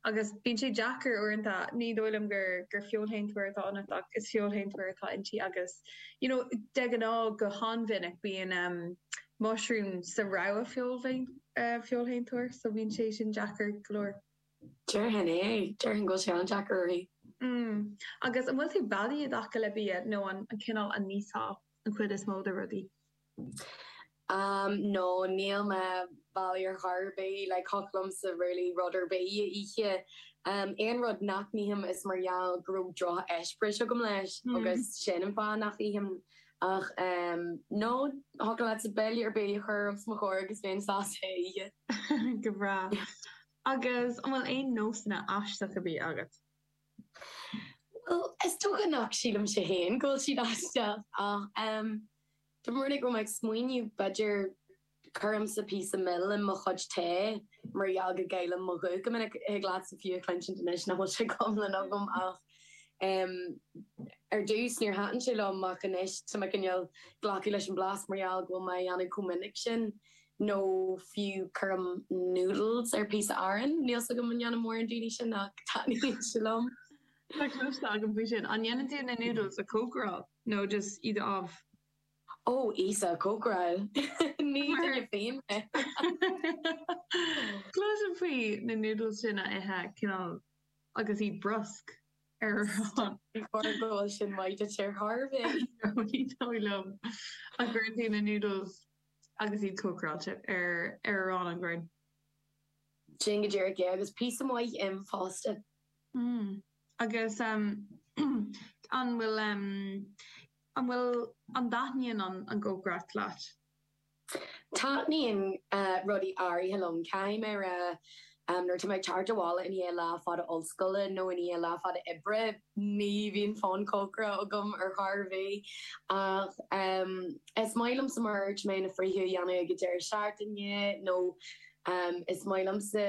Agus bíonn sé deacair uaireanta, ní dóigh liom gur gur feoilshéantóir atá ionat ach is feoilshéantóir atá inti agus you know de ghnáth go han-mhinic bíonn ehm mushroom sa rogha feoilshéantóra so bíonn sé sin deacair go leor. Déarfainn é, déarfainn go bhfuil sé an-deacair uirthi. Mm. Agus an bhfuil tú beadaí i dtaca le bia nó an cineál a n-íosfá an chuid is mó de rudaí? Ehm no níl mé beadaí ar chor ar bith, like thiocfadh liomsa really rud ar bith a ithe. Aon rud nach n-ithim is mar gheall go raibh drocheispéireas agam leis agus sin an fáth nach n-ithim. Ach ehm no, thiocfadh leatsa béile ar bith a chur os mo chomhair agus bheinn sásta é a ithe. Go breá. Agus an bhfuil aon nósanna aisteacha bídh agat? Bhuel, is dócha nach sílimse féin go bhfuil siad aisteach ach ehm. Tá mé ag dul ag smaoineamh, b'fhéidir, cuirimse píosa mil in mo chuid tae mar gheall go gcaillim mo ghuth go minic. Thig leatsa fiú a chluinsint anois nach bhfuil sé go hiomlán agam ach ar dtús níor thaitin sé liom ach anois tá mé cineál ag glacadh leis an blas mar gheall go bhfuil mé á dhéanamh chomh minic sin. Nó fiú cuirim noodles ar píosa aráin. Níl's agam an ndéanann mórán daoine sin ach taitníonn sé liom. Tá cloiste agam faoi sin. An ndéanann tú na noodles a chócaráil? nó just iad a obv. Ó, Íosa, cócaráil! Ní duine fiáin mé! Cloisim faoi na noodles daoine a ithe cineál agus iad briosc ar arán. Ní dóigh go bhfuil sin maith duit ar chor bith! No, ní dóigh liom. An gcuireann tú na noodles agus iad cócaráilte, ar arán an ghrinn? Sin go díreach é, agus píosa maith im fosta. Mm. Agus an bhfuil, an bhfuil, an dtaitníonn an cócaireacht leat? Taitníonn rudaí áirithe liom. Caithfidh mé rá nuair atá mé ag teacht abhaile i ndiaidh lá fada ollscoile nó i ndiaidh lá fada oibre ní bhíonn fonn cócaireachta agam ar chor ar bith. Ach is maith liomsa mar a dúirt mé na friochtaí a dhéanamh ag an deireadh seachtaine nó is maith liomsa.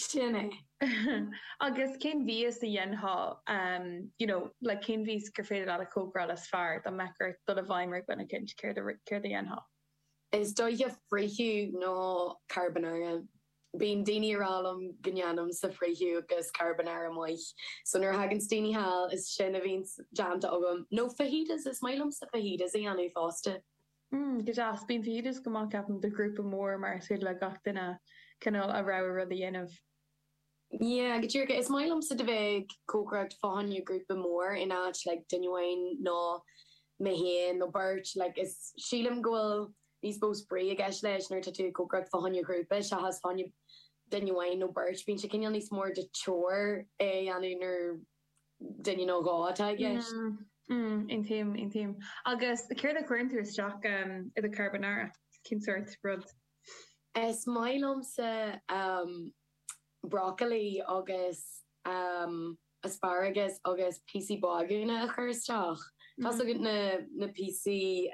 Sin é. Agus cén mhias a dhéanfá you know like cén mhias gur féidir leat a chócaráil is fearr, dá mbeadh ort dul i bhfeidhm ar dhuine eicínt, céard a céard a dhéanfá? Is dóiche friochadh nó carbonara. Bíonn daoine a' rá liom go ndéanaimse friochadh agus carbonara maith. So nuair a thagann daoine thall is sin a bhíonns déanta agam. Nó fajitas, is maith liomsa fajitas a dhéanamh fosta. Hmm, go deas. Bíonn fondue go maith, ceapaim, do ghrúpa mór mar is féidir le gach duine, cineál, a rogha rud a dhéanamh. Yeah, go díreach. Is maith liomsa do bheith ag cócaireacht fá choinne grúpa mór in áit like duine amháin nó mé féin nó beirt like is sílim go bhfuil níos mó spraoi i gceist leis nuair atá tú ag cócaireacht fá choinne grúpa seachas fá choinne duine amháin nó beirt. Bíonn sé cineál níos mór de chore é a dhéanamh nuair duine nó dó atá i gceist. Aontaím, aontaím. Agus céard a chuireann tú isteach i do charbonara? Cén sórt rud? Is maith liomsa brocailí agus asparagus agus píosaí bagúna a chur isteach. Tá a fhios agat na píosaí.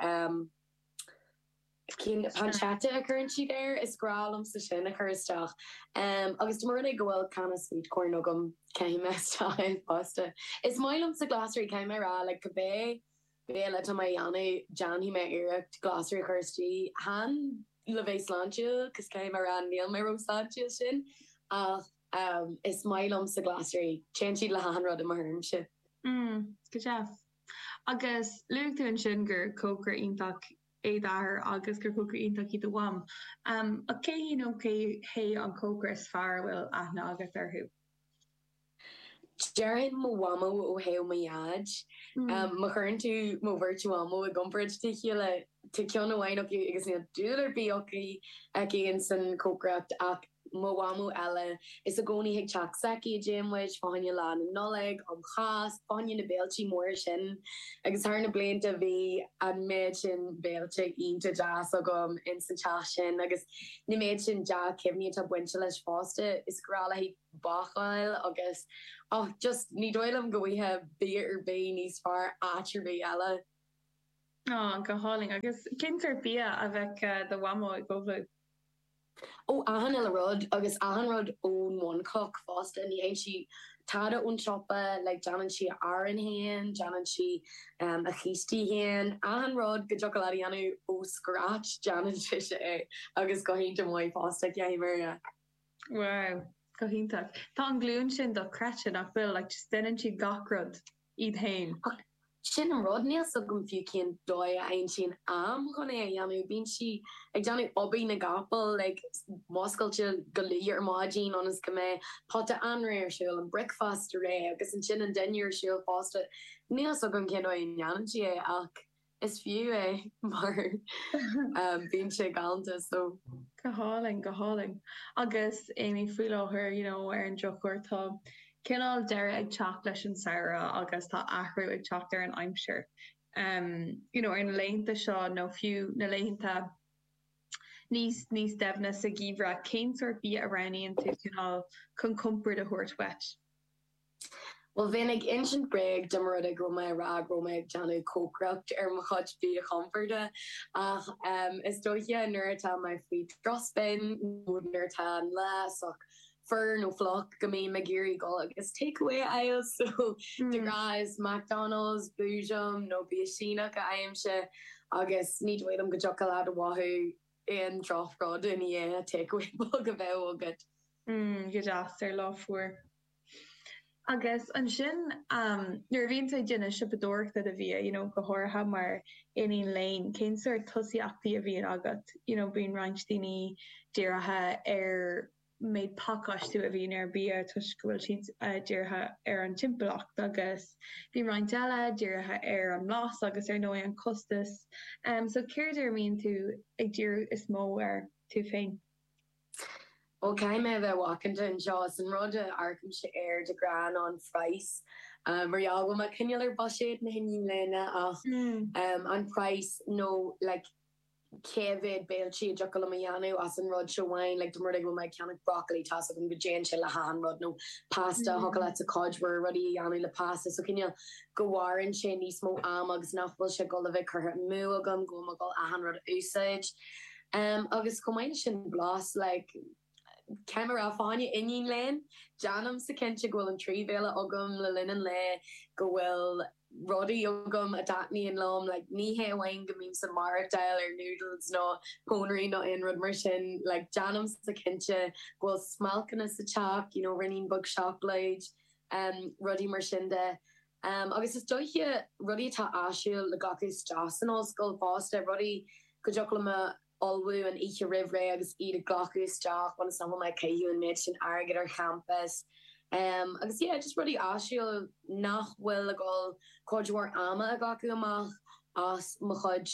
cinn pancetta a chuireann siad air, is grá liomsa sin a chur isteach. Agus má tharlaíonn go bhfuil canna sweet corn agam, caithim isteach é fosta. Is maith liomsa glasraí, caithfidh mé rá, like cibé béile atá mé a dhéanamh, déanfaidh mé iarracht glasraí a chur istigh. Chan le bheith sláintiúil, cos caithfidh mé rá níl mé ró-sláintiúil sin, ach is maith liomsa glasraí, téann siad le hachan rud i mo thuairimse. Mm, go deas. Agus luaigh tú ansin gur cócaire iontach é d'athair agus gur cócaire iontach í do mham. Ach cé hí nó cé hé an cócaire is fearr a bhfuil aithne agat orthu? Déarfainn mo mhamó ó thaobh mo dhaid. Má chuireann tú mo bheirt mhamó i gcomparáid le chéile, tá cionn amháin acu agus níl dúil ar bith aici insan chócaireacht ach mo mhamó eile, is i gcónaí ag teacht s'aici a dtéann muid, fá choinne Lá Nollag, um Cháisc, fá choinne na bhféiltí móra sin. Agus thar na blianta bhí an méid sin béilte iontach deas agam ins an teach sin agus an méid sin dea-chuimhní atá bainte leis fosta, is grá léithe bácáil agus och, just ní dóigh liom go bhfuighfeá bia ar bith níos fearr áit ar bith eile. Go hálainn. Agus cén sórt bia a bheadh do mhamó ag ullmhú. Ó achan uile rud, agus achan rud ón mbunchloch fosta, ní théann sí tada ón tsiopa, like déanann sí a arán féin, déanann sí a cístí féin, achan rud go dtiocfadh leat a dhéanamh ó scratch, déanann sise é, agus go hiontach maith fosta, caithfidh mé a rá. Wow, go hiontach. Tá an ghlúin sin dochreidte, nach bhfuil, like just déanann siad gach rud. iad féin. Ach sin an rud, níl 's agam fiú cén dóigh a aimsíonn sí am chun é a dhéanamh. Bíonn sí ag déanamh obair na gcapall, like muscailte go luath ar maidin ionas go mbeidh pota anraith ar siúl, an bricfeasta réidh agus ansin an dinnéar ar siúl fosta. Níl 's agam cén dóigh a ndéanann sí é ach. Is fiú é mar bíonn sé galanta so. Go hálainn, go hálainn. Agus Amy, faoi láthair, you know, ar an drochuair, tá cineál deireadh ag teacht leis an samhradh agus tá athrú ag teacht ar an aimsir. You know, ar na laethanta seo nó fiú na laethanta níos, níos doimhne sa gheimhreadh, cén sórt bia a roghnaíonn tú cineál chun compord a thabhairt dhuit? Bhuel, bheinn ag insint bréag dá mba rud é go raibh mé a rá go raibh mé ag déanamh cócaireacht ar mo chuid bia chomporda, ach is dóiche nuair atá mé faoi drochspin nó nuair atá an lá sách fuar nó fliuch go mbím ag iarraidh dul agus takeaway a fháil, so de ghnáth is McDonald's, Boojum nó bia Síneach a fhaighimse agus ní dóigh liom go dtiocfadh leat mothú aon drochrud i ndiaidh takeaway beag a bheith agat. Mm, go deas, ar lá fuar. Agus ansin nuair a bhíonn tú ag déanamh siopadóireachta do bhia, you know go háirithe mar iníon léinn, cén sort tosaíochtaí a bhíonn agat? You know bíonn roinnt daoine dírithe ar méid pacáistiú a bhíonn ar bia toisc go bhfuil siad dírithe ar an timpeallacht agus bíonn roinnt eile dírithe ar an mblas agus ar ndóigh an costas. So céard ar a mbíonn tú ag díriú is mó air tú féin? Bhuel, caithfidh mé a bheith macánta anseo, is an rud a amharcaimse air de ghnáth ná an price. Ag iarraidh bheith ag coinneáil ar bhuiséad na hiníne léinn ach an price nó like cé mhéad béiltí a dtiocfadh liom a dhéanamh as an rud seo amháin, like dá mba rud é go bhfuil mé ag ceannach broccoli, tá's agam go dtéann sé le hachan rud, nó pasta, thiocfadh leatsa cuid mhór rudaí a dhéanamh le pasta, so cineál go mhaireann sé níos mó am agus nach bhfuil sé ag dul a bheith curtha amú agam go bhfuil mé ag dul achan rud a úsáid. Em, agus chomh maith leis sin, blas, like, cé gur mé fós iníon léinn, déanaimse cinnte go bhfuil an trí bhéile agam le linn an lae, go bhfuil rudaí agam a dtaitníonn liom, like, ní hé amháin go mbímse ag maireachtáil ar noodles nó pónairí nó aon rud mar sin, like, déanaimse cinnte go bhfuil smailceanna sa teach, you know, ruainnín beag seacláid, em, rudaí mar sin de. Um, agus is dóiche, rudaí atá áisiúil le glacadh isteach san ollscoil fosta, rudaí go dtiocfadh liom a ullmhú an oíche roimh ré agus iad a ghlacadh isteach ionas nach bhfuil mé ag caitheamh an méid sin airgid ar champas. Um, agus yeah, just rudaí áisiúil nach bhfuil ag dul cuid mhór ama a ghlacadh amach as mo chuid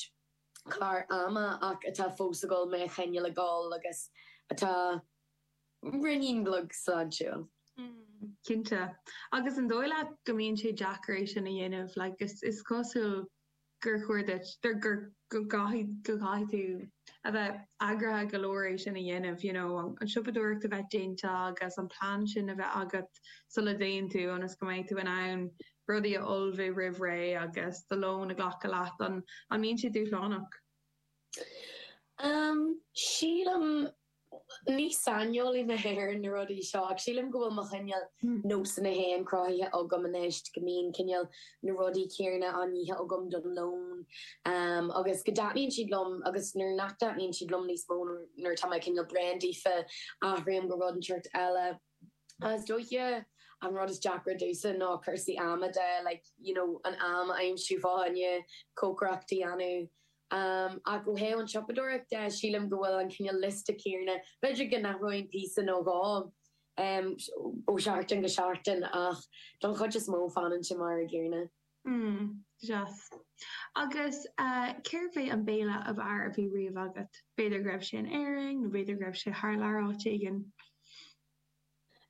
clár ama ach atá fós ag dul mé a choinneáil ag dul agus atá. Rinneamar sláintiúil. Cinnte. Agus an dóigh leat go mbíonn sé deacair é sin a dhéanamh? Like, is cosúil gur chóir duit, go gcaithfidh tú a bheith eagraithe go leor é sin a dhéanamh, you know, an siopadóireacht a bheith déanta agus an plean sin a bheith agat sula dtéann tú, ionas go mbeidh tú in ann rudaí a ullmhú roimh ré agus do lón a ghlacadh leat. An mbíonn sé dúshlánach? Sílim Ní saineolaí mé ar na rudaí seo, ach sílim go bhfuil mo chineál nósanna féin cruthaithe agam anois, go mbíonn cineál na rudaí céanna á n-ithe agam don lón, agus go dtaitníonn siad liom, agus nuair nach dtaitníonn siad liom níos mó, nuair atá mé cineál bréan daofa, athraím go rud inteacht eile. Ach is dóiche an rud is deacra domhsa ná cúrsaí ama de, like, you know, an am a aimsiú, fá choinne cócaireacht a dhéanamh. Ach ó thaobh an tsiopadóireacht de, sílim go bhfuil an cineál liosta céanna, b'fhéidir go n-athróinn píosa nó dhó ó sheachtain go seachtain ach don chuid is mó fanann sé mar an gcéanna. Hmm. Deas. Agus cérbh é an béile ab fhearr a bhí riamh agat? B'fhéidir go raibh sé in Éirinn, nó b'fhéidir go raibh sé thar lear áit éigin.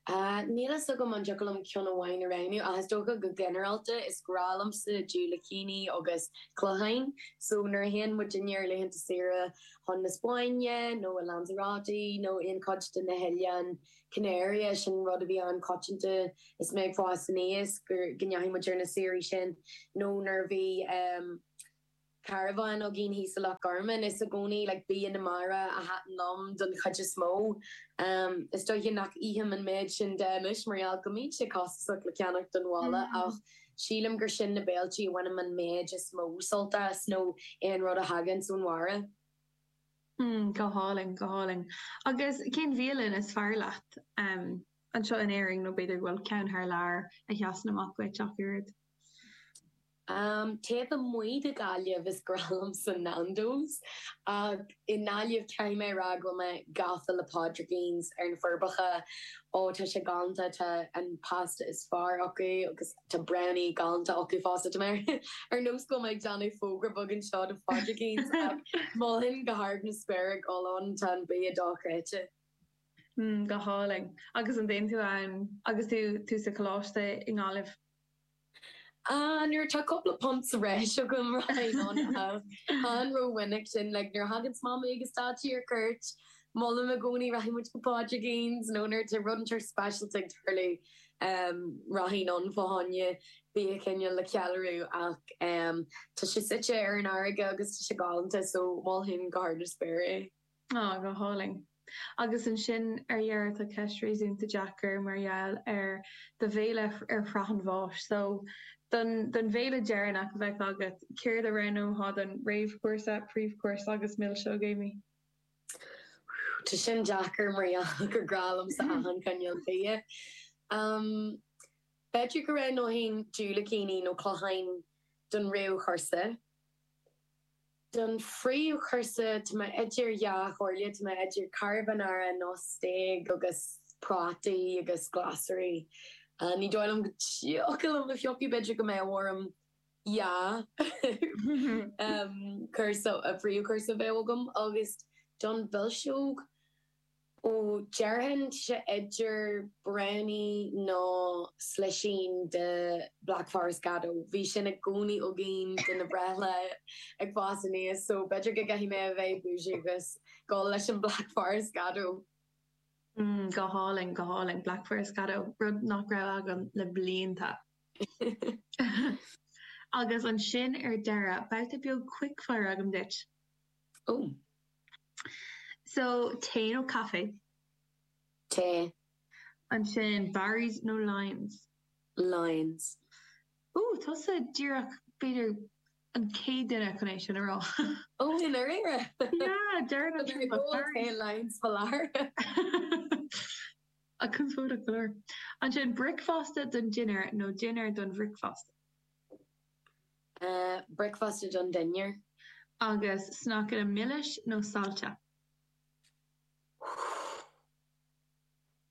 Ahh. Níl fhios agam an dtiocfadh liom ceann amháin a roghnú, ach is dócha go ginearálta is grá liomsa diúilicíní agus cloicheáin. So, nuair a théann muidinne ar laethanta saoire chun na Spáinne, nó i Lanzarote, nó aon chuid de na hoileáin, Canary, eh, sin rud a bhí an-choitianta is mé ag fás aníos, gur, go ndeachaigh muid ar na saoirí sin nó nuair a bhí em caravan againn thíos i Loch Garman is i gcónaí like bia na mara a thaitin liom don chuid is mó. Em is dóiche nach ithim an méid sin de anois mar gheall go mbíonn sé costasach le ceannach don bhaile ach sílim gur sin na béiltí a bhainim an méid is mó sult as nó aon rud a thaganns ón mhara. Hmm, go hálainn, go hálainn. Agus cén bhialann is fearr leat, em, anseo in Éirinn, nó b'fhéidir go bhfuil ceann thar lear a sheasann amach duit ach oiread? Em, taobh amuigh de Ghaillimh, is grá liomsa Nando's, ach i nGaillimh, caithfidh mé a rá go bhfuil mé gafa le Pádraicín's ar na Forbacha, Ó tá sé galánta, tá an pasta is fearr acu agus tá brownie galánta acu fosta. Tá mé ar nós go bhfuil mé ag déanamh fógra beag anseo do Phádraicín's ach mholfainn go hard na spéire dul ann, tá an bia dochreidte. Mm, go hálainn. Agus an dtéann tú ann agus tú sa choláiste i nGaillimh? Ah, nuair atá cúpla punt sa bhreis agam, rachainn ann ach chan ró-mhinic sin, like nuair a thaganns Mamaí agus Daidí ar cuairt, molaim i gcónaí, rachaidh muid go Pádraicín's nó nuair atá rud inteacht speisialta ag tarlú, em, rachainn ann fá choinne bia cineál le ceiliúradh ach, em, tá sé suite ar an fharraige agus tá sé galánta so mholfainn go hard na spéire é. Á, go hálainn. Agus ansin ar deireadh tá ceist réasúnta deacair mar gheall ar do bhéile ar shraith an bháis. So, don don bhéile deireanach a bheadh agat, céard a roghnóthá don réamhchúrsa, príomhchúrsa agus milseog, Amy? Whew, tá sin deacair mar gheall gur grá liomsa achan chineál bia. Umm, b'fhéidir go roghnóinn diúilicíní nó cloicheáin don réamhchúrsa. don phríomhchúrsa tá mé idir dhá chomhairle, tá mé idir carbonara nó stéig agus prátaí agus glasraí. Ní dóigh liom go dtiocfadh liom a phiocadh, b'fhéidir go mbeadh orm dhá chúrsa, príomhchúrsa a bheith agam agus don mhilseog, Ó déarfainn sé idir brownie nó slisín de Black Forest Gateau. Bhí sin i gcónaí againn do na breithlaethanta ag fás aníos so b'fhéidir go gcaithfidh mé a bheith bougie agus dul leis an Black Forest Gateau. Mm, go hálainn, go hálainn. Black Forest Gateau, rud nach raibh agam le blianta. Agus ansin ar deireadh, babhta beag quickfire agam duit. Ó. So, tae nó caife? Tae. Ansin, Barry's nó Lyons? Lyons. Ó, tusa díreach, b'fhéidir, an chéad duine chun é sin a rá. Ó, i ndáiríre? Yeah, deireann an triúr liom Barry's. Tae Lyons for life. Ach conspóideach go leor. Ansin, bricfeasta don dinnéar nó dinnéar don bhricfeasta? bricfeasta don dinnéar. Agus sneaiceanna milis nó saillte? Huth.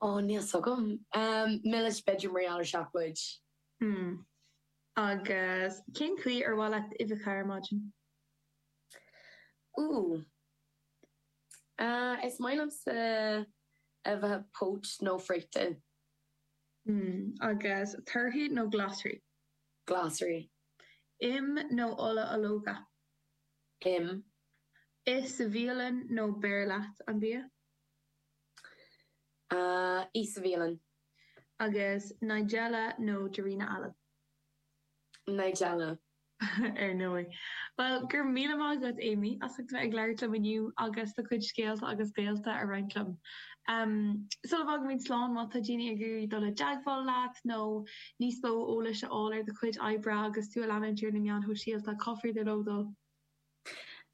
Ó, níl 's agam. Milis b'fhéidir mar gheall ar seacláid. Hmm. Agus cén chaoi ar mhaith leat uibheacha ar maidin? Huth. Is maith liomsa uibheacha poached nó friochta. Hmm. Agus torthaí nó glasraí? Glasraí. Im nó ola ológa? Im. Ith sa bhialann nó beir leat an bia? A, ith sa bhialann. Agus Nigella nó Darina Allen? Nigella. Ar ndóigh. Bhuel, go raibh míle maith agat, Amy, as a bheith ag labhairt liom inniu agus do chuid scéalta agus d'eolas a roinnt liom. Am, Sula bhfágaimid slán, má tá daoine ag iarraidh dul i dteagmháil leat nó níos mó eolais a fháil ar do chuid oibre agus tú a leanúint ar na meáin shóisialta, cá féidir leo dul?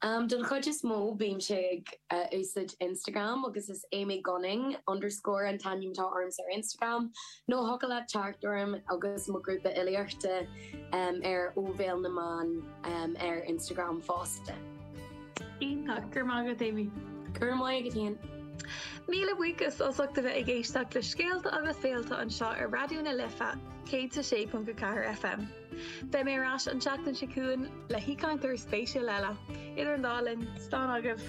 Am, Don chuid is mó, bímse ag úsáid Instagram agus is Amy Gunning underscore an t-ainm atá ormsa ar Instagram, nó thiocfadh leat teacht orm agus mo ghrúpa filíochta ar Ó Bhéal na mBan ar Instagram fosta. Iontach! Go raibh maith agat Amy! Go raibh maith agat Ian! Míle buíochas as ucht a bheith ag éisteacht le scéalta agus féilte anseo ar Raidió na Life 106.4 FM. Beidh mé ar ais an tseachtain seo chugainn le haoichainteoir spéisiúil eile. Idir an dá linn, slán agaibh!